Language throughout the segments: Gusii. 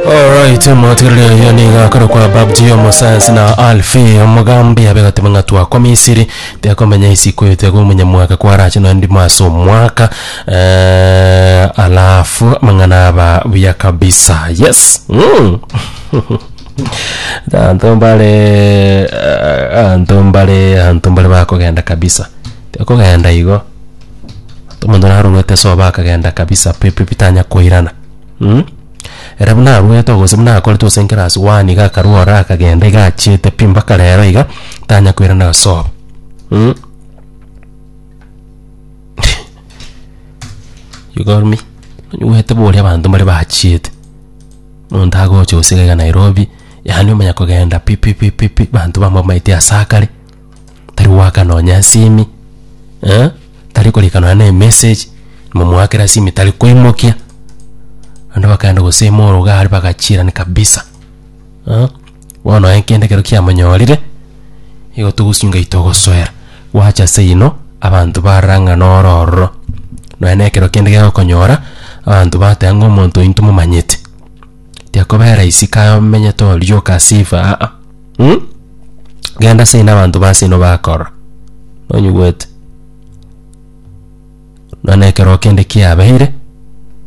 Alright, motigereria oyo niga akore kwa babji omosayansi na alfi omogambi abe gatebe ng'a twakwa misiri tiakomenya isiko eyo tiakoba omonyamwaka kwarache nonya ndimo ase omwaka eh, alafu amang'ana aba buya kabisa yes mm. anto mbare eh, anto mbare anto mbare bakogenda kabisa tiakogenda igo Omonto narorwete sobo akagenda kabisa pi pi pi tanya koirana mh. Ere buna arwete oo gose buna akorete gose class one iga akarwa ororo akagenda iga achiete pi mpaka rero iga tanya koirana sobo mh. You got me? Onywete boria abanto mbare bachiete, omonto agocha gose iga iga Nairobi, yaani omanya kogenda pi pi pi pi pi abanto bamwamaeti asakare. tari goaka nonya esimi, eh, tari korika nonya na emessage, momoakera esimi tari koimokia, naende bakaenda gosema oro iga are bagachiirani kabisa, eh, bono aye kende ekero kiamonyorire, igo togosinga eye togosoera, gwacha ase eyino, abanto barora ng'a noro ororo, nonya na ekero kende gegokonyora, abanto bateba ng'a omonto oyo ntomomanyete. Tiakobera raisi kaye omenyete orioka ase efa aa, um, genda ase ina abanto ba seino bakorora. Nonyigwete? Nonya ekeroo kende kiabeire,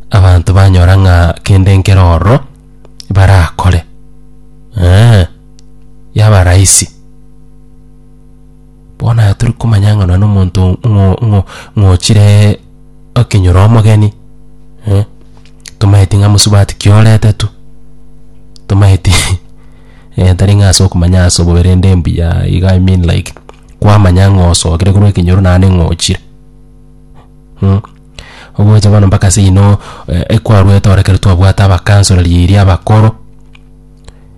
abanto banyora ng'a kende nkere ororo barakore, eeh, yaba raisi. Bono aya tori komanya ng'a nonye na omonto ng'o ng'o ng'ochire okenyora omogeni, eh, tomaeti ng'a mosubati ki orete tu, tomaeti eh tari ng'a ase okomanya ase obobe rende mbuya iga i mean like kwamanya ng'a osokire korwa ekenyoro naende ng'a ochire. Ogocha bono mpaka ase eyio no ekwarwete ore ekero twabwate abakansoro riria abakoro.